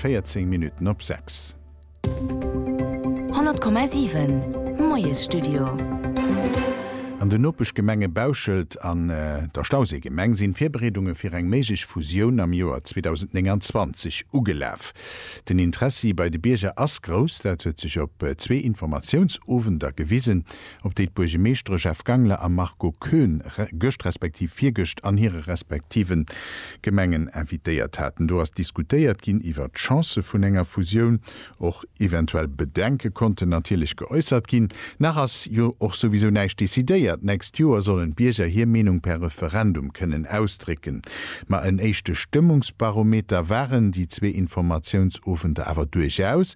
14 Minutten op 6. 100,7, Moiesstudio. An den Nopeschgemenge Bauschelt an der Stauséigemeng sinn d'Virbereedunge fir eng méiglech Fusioun am Joer 2029 ugelaf. Den Interessi bei de Bierger ass grouss, dat huet sech op zwee Informatiounsowender gewisen. op déi d'Buergemeeschtere Jeff Gangler a Marco Koen gëscht respektiv virgëscht an hire respektive Gemengen invitéiert haten. Do ass diskutéiert ginn iwwert d'Chancë vun enger Fusioun. Och eventuell Bedenke konnten natierlech geäussert ginn. Nach ass jo och souwisou näischt decidéiert. D'nächst Joer sollen d'Bierger hir Meenung per Referendum kënnen ausdrécken. Ma en éischte Stëmmungsbarometer waren déi zwee Informatiounsowenter awer duerchaus.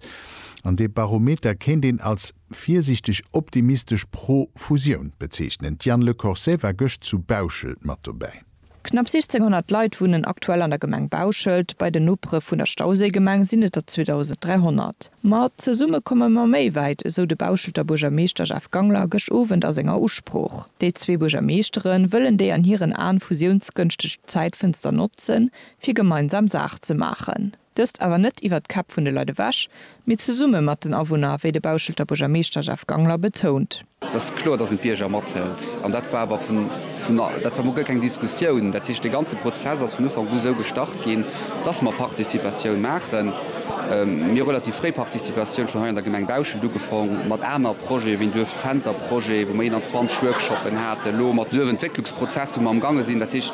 An dee Barometer kéint een als. virsiichteg optimistesch pro-Fusioun bezeechnen. D'Diane Lecorset war gëscht zu Bauschelt mat dobäi. Knapp 1.600 Leit wunnen aktuell an der Gemeng Bauschelt. Bei den Nopere vun der Stauséigemeng sinn et der 2.300. Ma zesumme komme mer méi wäit, esou de Bauschelter Buergermeeschter Jeff Gangler gëscht Owend a senger Usprooch. Déi zwee Buergermeeschtere wëllen déi an hiren Aen fusiounsgënschteg Zäitfënster notzen, fir gemeinsam Saach ze maachen. Dëst awer net iwwert d'Käpp vun de Leit ewech, mee zesumme mat den Awunner, wéi de Bauschelter Buergermeeschter Jeff Gangler betount. Et ass kloer, datt een d'Bierger mathëlt. An dat war awer vun, dat war mol guer keng Diskussioun. Dat heescht, dee ganze Prozess ass vun Ufank u esou gestart ginn, datt mer Participatioun maachen. Mir hu relativ fréi Participatioun schonn hei an der Gemeng Bauschelt ugefong, mat aner Projete wéi en Duerfzenterprojet, wou mer 21 Workshoppen haten, elo mat. Prozess wou mer am gaange sinn. Dat heescht,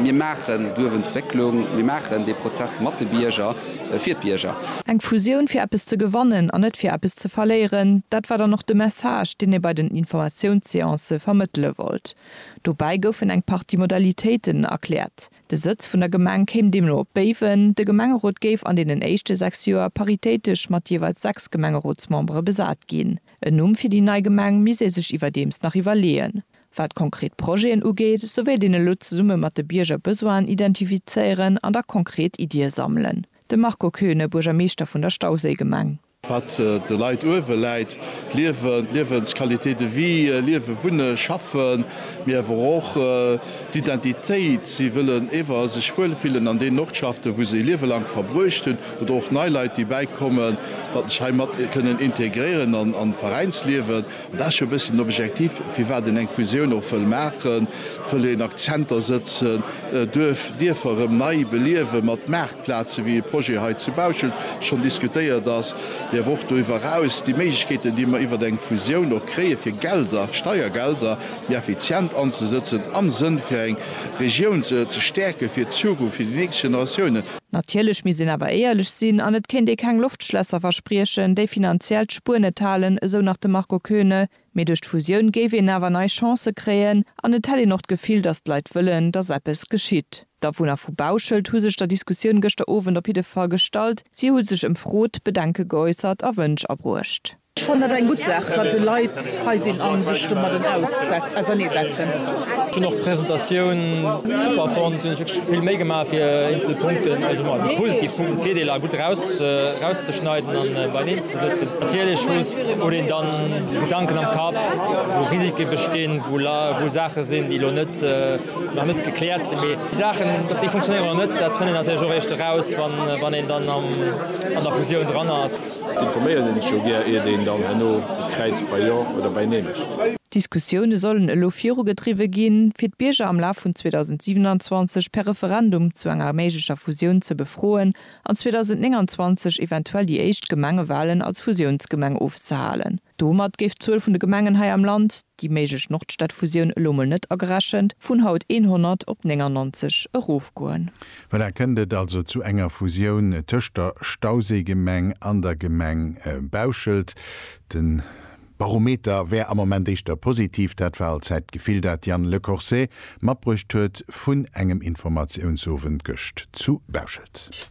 mir maachen d'Duerfentwécklung, mir maachen dee Prozess mat de Bierger, fir d'Bierger. Eng Fusioun fir eppes ze gewannen an net fir eppes ze verléieren, dat war dann och de Message, deen ee bei den Informatiounsseancë vermëttele wollt. Dobäi goufen eng Partie Modalitéiten erkläert. De Sëtz vun der Gemeng kéim deemno op Béiwen. De Gemengerot géif an deenen éischte sechs Joer paritéitesch mat jeeweils sechs Gemengerotsmembere besat ginn. En Numm fir déi nei Gemeng misst ee sech iwwerdeems nach iwwerleeën. Wat konkret Projeten ugeet, sou wéilt een elo zesumme mat de Bierger Besoinen identifizéieren an da konkret Iddie sammelen. De Marco Koeune, Buergermeeschter vun der Stauséigemeng. Wat de Leit uewe läit, d'Liewen, d'Liewensqualité de vie, liewen, wunnen, schaffen, mee awer och d'Identitéit. Si wëllen ewer sech wuel fillen an deenen Ortschaften, wou se e Liewe laang verbruecht hunn. Oder och nei Leit, déi bäikommen, datt sech hei mat kënnen integréieren an d'Veräinsliewen. Dat ass jo e bëssen objektiv, firwat een eng Fusioun och wëll maachen. Et wëll een Akzenter sëtzen, Duerf, Dierfer erëm nei beliewen, mat Maartplazen, wéi e Projet hei zu Bauschelt schonn diskutéiert ass, mee awer och doriwwer eraus déi Méiglechkeeten, déi mer iwwert eng Fusioun och kréien, fir Gelder, Steiergelder méi effizient anzesëtzen, am Sënn fir eng Regioun ze stäerken, fir d'Zukunft, fir déi nächst Generatiounen. Natierlech misst een awer éierlech sinn an et kéint ee keng Loftschlässer verspriechen, déi finanziell d'Spuer net halen, esou nach de Marco Koeune. Mee duerch d'Fusioun géif een awer nei Chancë kréien an et hätt een och d'Gefill, datt d'Leit wëllen, datt eppes geschitt. D'Awunner vu Bauschelt hu sech der Diskussioun gëschter Owend op jidde Fall gestallt. Si hu sech ëmfrot, Bedenke geäussert a Wënsch abruecht. Ech fannen dat eng gutt Saach, wat de Leit hei sinn a sech domadden auserneesetzen. Ech hunn och d'Presentatioun super fonnt. Hunn ech wierklech vill Méi gemaach fir eenzel Punkten, also emmer déi positiv Punkten, Virdeeler gutt erauszeschneiden an beieneen ze sëtzen. Natierlech huet een dann Gedanken am Kapp, wou Risike bestinn, wou Saache sinn, déi elo net nach net gekläert sinn. Mee déi Saachen, ob déi funktionéieren oder net, dat fënnt een natierlech och eréischt eraus, wann een dann an der Fusioun dran ass. D'informéieren een ech jo gär iert een dann herno kräizt bei Jo oder bei Neen. D'Diskussioune sollen elo virugedriwwe ginn, fir d'Bierger am Laf vun 2027 per Referendum zu enger méiglecher Fusioun ze befroen an 2029 eventuell déi éischt Gemengewalen als Fusiounsgemeng ofzehalen. Domat géif d'Zuel vun de Gemengen hei am Land, déi méiglech Nordstadfusioun elo mol net agerechent, vun haut 100 op 99 erofgoen. Voilà, kënnt et also zu enger Fusioun tëscht der Stauséigemeng an der Gemeng Bauschelt. De Barometer wär am Moment éischter positiv, dat war allzäit d'Gefill, dat Yann Le Corset matbruecht huet vun engem Informatiounsowend gëscht zu Bauschelt.